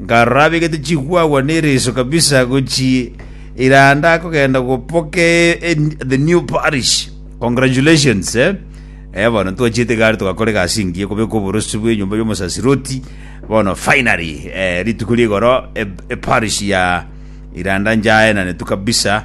Nkarorabegete chigwagwa ne riso kabisa gochia ira ndakogenda gopoka the new parish. Congratulations eh. Eh bono twachiete gari togakora egasi engiya kobeka oborosi bw'enyomba y'omosasiroti bono finally eh, rituko rigoro e, e parish ya iranda njaenane tu kabisa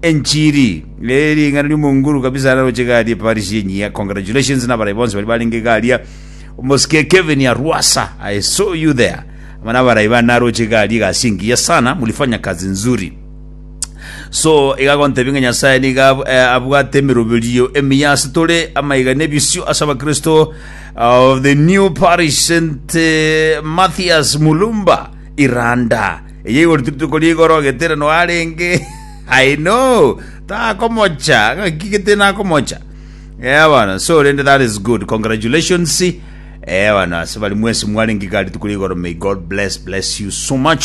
Enchiri ye ring'ana ri'omonguru kabisa araroche gari e Paris yenyia. Congratulations n'abarai bonsi bari barenge garia. Omosike Kevin Arwasa, I saw you there. Ama n'abarai bane aroche gari egasi engiya sana, mulifanya kazi nzuri. So iga gontebia ng'a Nyasaye niga ab- eh, abwate emeroberio emiya ase tore amaiga n'ebisio ase abakristo of the new Paris St. eh, Matthias Mulumba Iranda Eyio igoro rituko rigoro geterano arenge aino takomocha ngaki gete nakomocha eh bana so rende that is good congratulations eh bana ase bari mwese mwarenge gari rituko rigoro may god bless bless you so much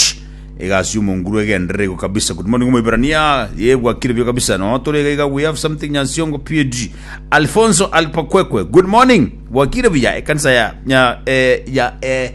egasi omonguru egenderere igo kabisa good morning moibrania yebwa kire bio kabisa no tore gaiga we have something nyansiongo pd alfonso alpakwekwe good morning bwakire buya ekanisa ya ya eh, ya eh,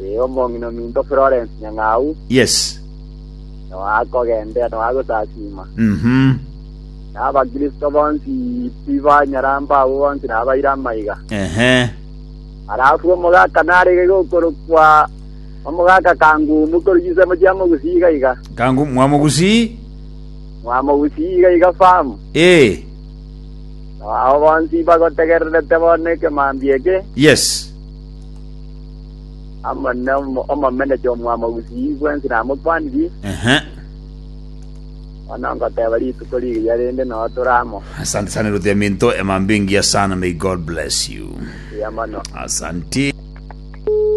Ee, omong'ina ominto Florence Nyang'au Yes. noe akogenderera, noe agosasiima. Mhm. Na Abakristo bonsi tibanyaramba, abwo bonsi nabaire amaiga. Ehe. Alafu omogaka narege gokorokwa omogaka Kangumu korwa chisemo chia Mogusi iga iga, Kangu mwamogusi. Mwamogusi iga iga farm. Ee. Nao bonsi bagotegererete bono ekemambia eke, Yes. Amane omo- omomenecha omwamo gusii bwensi namokwaniri, Ehe. bono ngoteba rituko rigiya rende noo tore amo. Asante sana Ruth ya Minto, Emambingia sana, may God bless you. Buya mono. Asante.